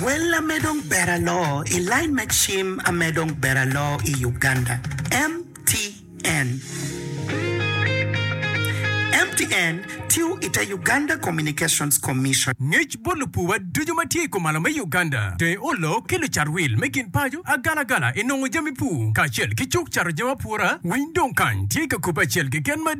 Well ame dong ber aloo i line me cim ame dong ber aloo i Uganda, MTN. MTN tiyo i te Uganda Communications Commission. Ngec bot lupuwa ducu ma tye i kumalo me Uganda, dong olo ki lucat wil me gin paco agalagala i nongo jami pur kacel ki cuk cato jami apura, winy dong kany tye ka kube acel keken ma.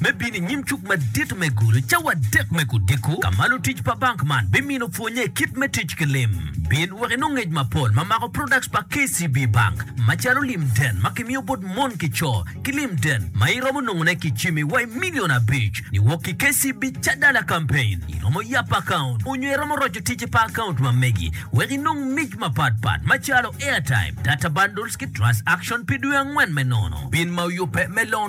me bino i nyim Cuk Madit me Gulu cawa adek me odiko, ka ma lutic pa bank man bimino pwonnye kit me tic ki lim. Bin wek inong ngec mapol ma mako products pa KCB Bank, macalo lim den ma kimiyo bot mon ki co, ki lim den ma iromo nongone ki cimi wa i million abic niwok ki KCB Cadala Campaign. Iromo yap account onyo iromo roco ticce pa account ma megi wek inong mic mapat pat macalo airtime, data bundles ki transaction pi dwe angwen me nono. Bin ma oyubbe me loan.